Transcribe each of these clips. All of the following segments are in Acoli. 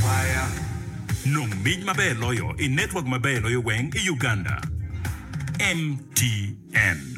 Paya, Nong mic maber loyo i network maber loyo weng i Uganda, MTN.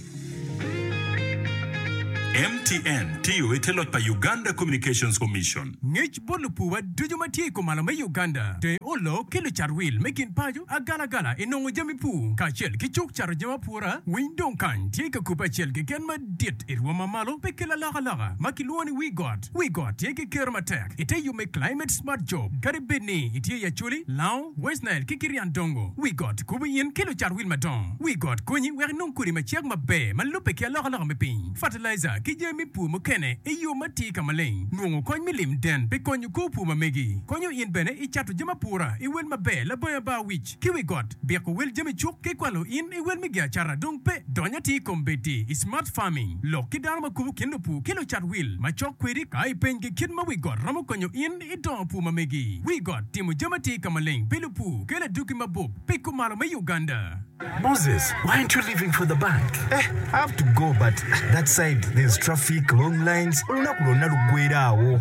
MTN tiyo i te loc pa Uganda Communications Commission. Ngec bot lupuwa ducu ma tye i kumalo me Uganda, te olo ki lucat wil me kin paco agalagala i nongo jami pur kacel ki cuk cato jami apura, winy dong kany tye ka kubbe acel keken madit i rwom mamalo pe ki lalokaloka ma kilwongo ni Wi Got. Wi Got tye ki kero matek. I te yo me Climate Smart Job, kadi bed ni itye i Acholi, Lao, West Nile, ki Kirian Dongo, wi got kubo in ki lucat wil madongo. Wi got konyi wek inong kodi ma cek maber ma lubbe ki alokaloka me piny, fertilizer, ki jami me pur mukene i yo ma tye ka maleng. Nongo kony me lim den pi konyo kor pur ma megi konyo in bene i cato jami apura i wel maber. Labongo Abaowic. ki wi got, biko wel jami cuk ki kwalo in i wel me giacata dong pe. Dony atir i kom bedi i smart farming, lok ki dano ma kubo kin lupur ki lucat wil macok kwedi ka ipenygi kit ma wi got romo konyo in i dongo pur ma megi. Wi got timo jami atir ka maleng pi lupur ki laduki mabup pi kumalo me Uganda. Moses, why aren't you leaving for the bank? Eh, I have to go but that side there's traffic, long lines, olunok lwonna lugwera awo.